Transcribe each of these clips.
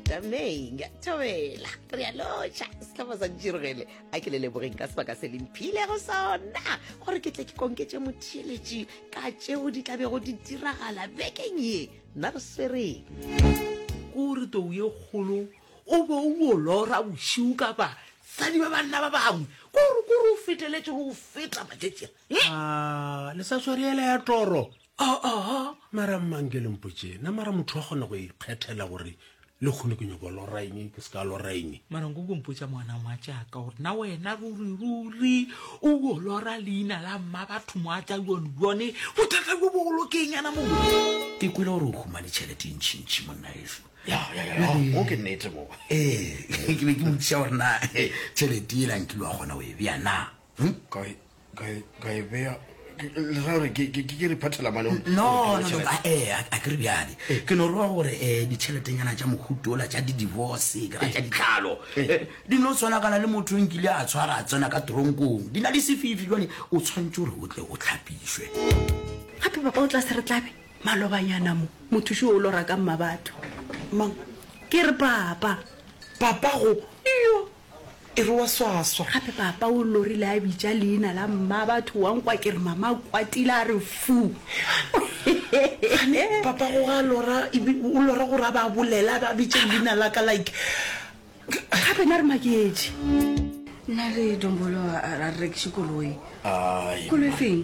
tamaeng thobela re a lotšha setlhopha sa ntširogele a ke le lebogeng ka sebaka se lemphilego sona gore ke tle ke konketše motheeletši ka tšeo di tla bego di diragala bekeng ye nna re swereng kore tou ye kgolo o be o bolora bošiu ka basadi ba banna ba bangwe kore kore o feteletše go feta matšetšea le sa swariela ya toro Aa, mara mmang ke lempotše na mara motho wa kgona go ikgethela gore le kgone ke nyoko loraeng ke se ka loraeng mara nko kompotša moana moa jaaka gore na wena ruri ruri o o lora leina la mma batho mo a tla yone yone bothata jo bogolo ke eng yana mo ke kwele gore o humane tšhelete e ntšhintšhi monna eso o ke nnete mo ee ke be ke motšha gore na tšhelete e lang kile wa kgona o e bja na ka e ka e ka e bea ke- ke- le ra gore ke ke- ke re phathela mane o- no o- no no a eh, a- a ke re bjale ke no roa gore um ditšheletenyana tša mohuto ola tša di-divorce ka tša ditlhalo eh, di no tshwanakana le motho o nkile a tshwara a tsena ka tronkong di na le sefifi jale o tshwanetse gore o tle o tlhapišwe gape baba o tla se re tlabe malobanyana mo mothuši o lora ka mmabatho mang ke re papa papago iyo E re wa swaswa. Gape papa o lorile a bitša leina la mma batho wa nkwa ke re mama a kwatile a re fu. Gane papa go ga lora ebe o lora gore a ba bolela a ba bitše leina la ka like gape na re maketše. Nna le Dombolo a re rekiše koloi. Koloi feng?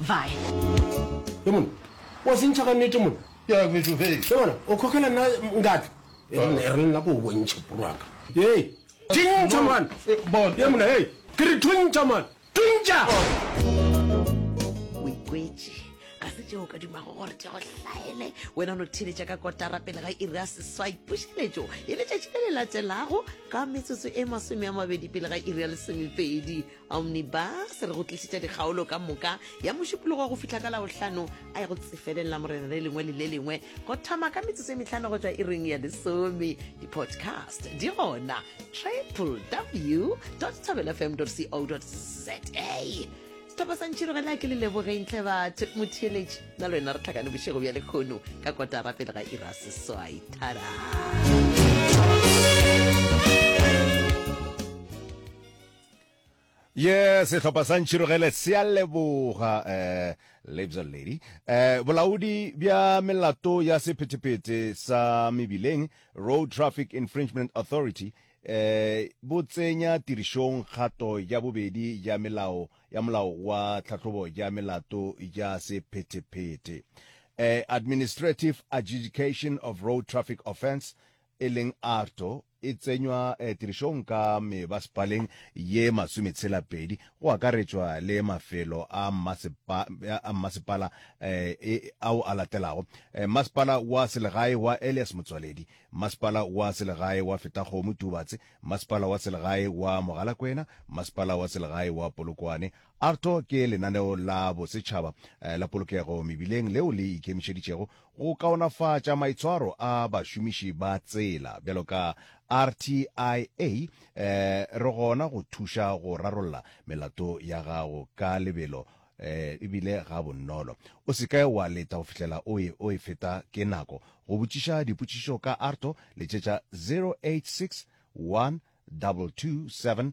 Vaya. Ge monna, wa se ntšha ka nnete monna. Ke a kwetšo fela. Ge monna, o khokela nna ngatla. E re nna, e re nna ko o bontšhe porwaka. Hei, tšintšha monna. Eh, bon. Ye monna, hei, ke re thuntšha monna. Thuntšha! O ikwetše, ga se tšeo o ka dumago gore tle go hlaele. Wena o no theletša ka kotara pele ga iri ya seswai. Pušeletšo e letšatši le le latelago ka metsotso e masome a mabedi pele ga iri ya lesomepedi. Omnibus re go tlišitša dikgaolo ka moka ya mošupologo go fihla ka labohlano a ya go tsefeleng la morena le lengwe le le lengwe go thoma ka metsotso e metlhano go tšwa iring ya lesome di-podcast di gona triple w tabelfm co za sethopa sa ntšhirogela ke le lebogeintle batho motheeletši na le wena re tlhakane bošego bja lekgono ka kotara pele ga ira seswai thara ye sehlopha sa ntšhirogele se a leboga eh, labs lady eh, bolaodi bja melato ya sephetephete sa mebileng road traffic infringement authority eh, bo tsenya tirišong kgato ya bobedi ya melao ya molao wa tlhahlobo ya melato ya sephetephete eh, administrative adjudication of road traffic offence e leng Arto, e tsenywa tirišong ka mebasepaleng ye masometshela-pedi, go akaretšwa le mafelo a mmasepala ao a latelago, Mmasepala wa Selegae wa Elias Motsoaledi, Mmasepala wa Selegae wa Fetakgomo Tubatse, Mmasepala wa Selegae wa Mogalakwena, Mmasepala wa Selegae wa Polokwane. Arto ke lenaneo la bosetšhaba la polokego mebileng leo le ikemišeditšego go kaonafatša maitshwaro a bašomiši ba tsela bjalo ka RTIA, re gona go thuša go rarolla melato ya gago ka lebelo e bile ga bonolo. O se ke wa leta go fihlela o e o e feta ke nako. Go botšiša dipotšišo ka ARTO, letšetša 0861 227